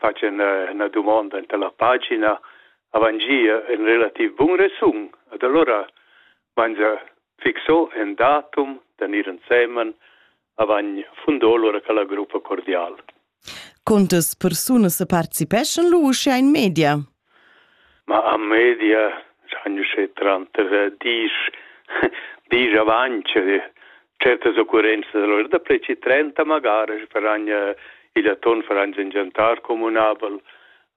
fatg una, una domanda enta la pagina avangia un relativ bun resum ed allora mangia fixo en datum tenir ensemen avant fundò lura che la gruppa cordial. Quantas persunas participeschan lu uschia in media? Ma a media sagn uschè tranter diesch diesch avaunt certas occurrenzas. Alura daplü trenta magari faran il atun faran ün giantar cumünabel.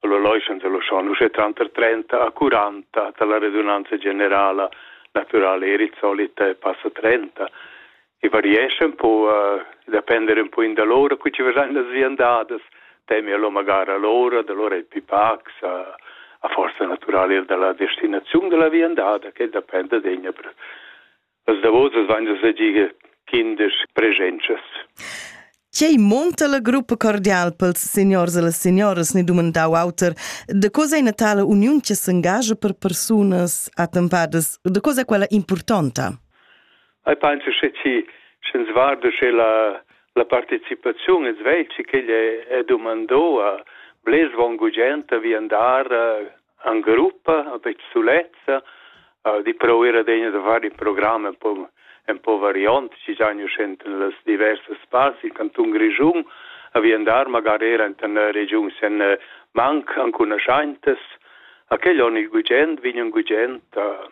Alura loischan se loschan uschè tranter trenta a curanta da la redunanza generala. Natüral eir il solit passa trenta. e variescha un po, uh, depender un po in da lora, cu ci vesan las viandadas, temi allo magara lora, da lora il pipax, a, a forza naturale er dalla destinazione della viandada, che depende degna per las davosas van da segige kindisch presences. Quei monta la gruppa cordial pels signors e las signoras, ne dumandau auter, de cosa è natala union che s'engagia per persunas attempadas, de cosa è quella importanta? Ei pensa che ti sch'ins guarda che la la participaziun es veci ch'egl è dumandò a blers von gugent vi andar an gruppa a pe sulezza di proir adegna da far in programm un po un po variant ci giagn uschent in las diversas spazi in canton Grischun a vi andar magari era in tan region sen manc ancunaschaintas a quel on il gugent vign un gugent a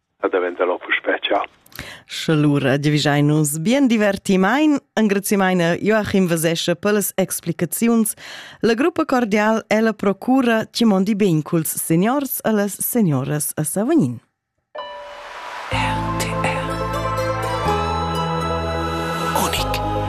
a daventar lo puspè ciao. Sche lura giavischein nus bien divertimain, engrazimaina Joachim Vesesche per las explicaziuns. La gruppa cordial ella procura ci mondi ben culs seniors e las senioras a Savognin.